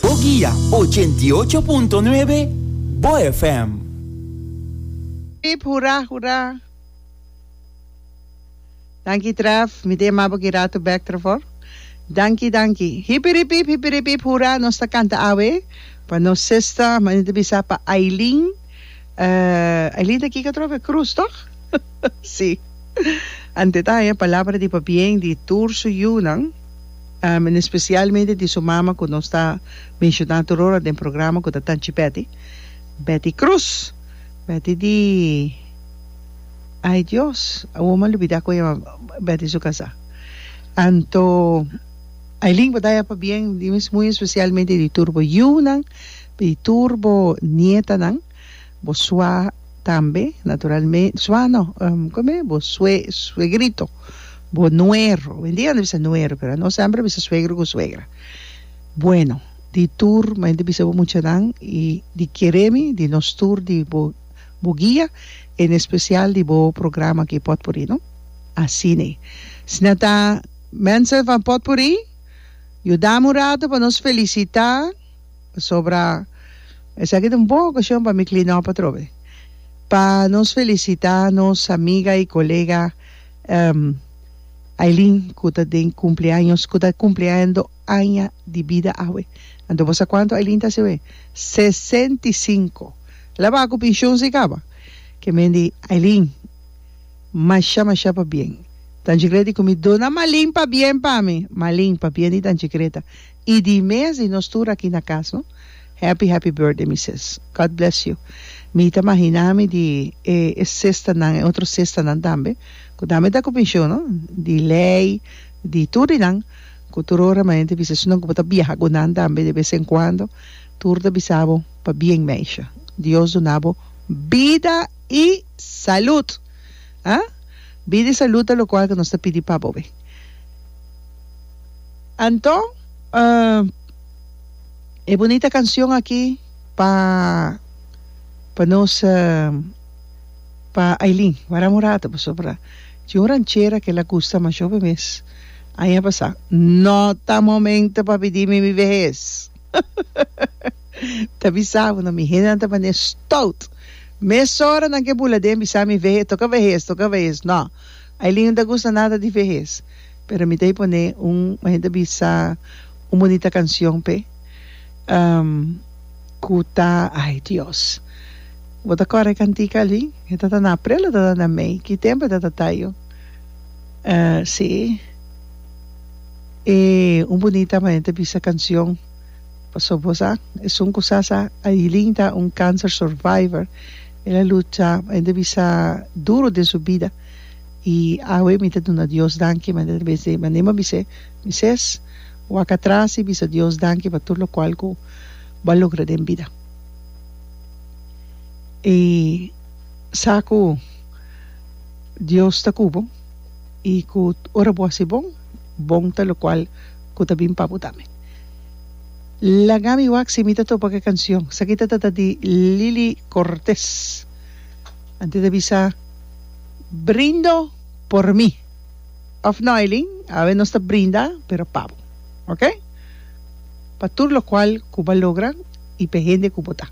Bo guia ochenta i ocho punto nuebe Bo FM. Hip hura hura. Danki Tref, mi ta yama bo ki rato bek trevor. Danki danki. Hipiripip hipiripip hura nos ta canta awe pa nos sister manita bisa pa Ailin. eh, Ailin ta kika atrobe cruz toch? si, ante ta haya palabra di pabien di tur su yunan, em, en especialmente di su mama cu nos ta menciona tur ora den programa cu ta Tanchi Betty, Betty Cruz, Betty di, ay Dios, awor m'a lubida cu a yama Betty su casa. Anto, Ailin bo ta haya pabien, di mes muy especialmente di tur bo yunan, Di tur bo nietanan, bo sua tambe, naturalme, sua no, kome? Bo sue, suegrito, bo nuero, hoy en dia a bisa nuero, pero ano semper a bisa suegro ku suegra. Bueno, di tur bo hende bisa bo muchanan i di kere mi, di nos tur, di bo bo guia, en espesial di bo programa aki Potpuri, no? Asina. Si nan ta mensen van Potpuri, yuda mi un ratu pa nos felisita. Pasobra esaki ta un bon ocasion pa mi cleanop atrobe. Pa nos felicita nos amiga y colega Aileen cu ta den cumpleaños, cu ta cumpleando aña di bida awe. Anto bo sa cuanto Aileen ta haci awe? Sesenta y cinco! La ba cu pension si caba? Ke men di Aileen, masha masha pa bien. Tanchikret di cu mi duna Malin pa bien pa mi. Malin pa bien di Tanchikret ta Y di mes di nos tur aki na cas no. Happy happy birthday mi sis. God bless you. Mi ta mahina mi di e e sistanan e otro sistanan tambe cu tambe ta cu pensioen no. Di Ley, di tur di nan cu tur ora mi mente bisa esun cu bo ta biaha cu nan tambe de vez en cuando tur ta bisa bo pa bien meisje. Dios duna bo bida y salud ah. Bida y salud ta locual cu nos ta pidi pa bo be. Anto e bunita cancion aki pa pa nos pa Ailin waram un rato pasobra tin un ranchera que la gusta masho be mes aña pasa no ta momento pa bidi mi mi vehes ta bisa bono mi hendenan ta bane stout mesora nan ke bula den bisa mi vehe toca vehes toca vehes no Ailin no ta gusta nada di vehes pero mi ta e pone un mehen ta bisa un bonita cancion pe cu ta ay Dios bo ta cora e cantica ali e ta ta na aprel o ta ta na mei ki tempo e ta ta tayo si e un bonita mehen ta bisa cancion pasobra bo sa esun cu sa sa Ailin ta un cancer survivor El a lucha, el ta bisa duro den su bida y awe mi ta duna Dios danki manera ta bese manera mi a bise Moises, wak atras y bisa Dios danki pa tur locual cu bo a logra den bida. E sa cu Dios ta cu bo y cu ora bo a haci bon, bon ta locual cu ta bin pa bo tambe. Lagami wak si mi ta topa ku e kanshon. Esaki ta tata di Lili Cortes. Antes ta bisa Brindo por mi. Of no Eileen, awe nos ta brinda pero pa bo. Oke? Pa tur lokual ku bo a logra i pa e hende ku bo ta.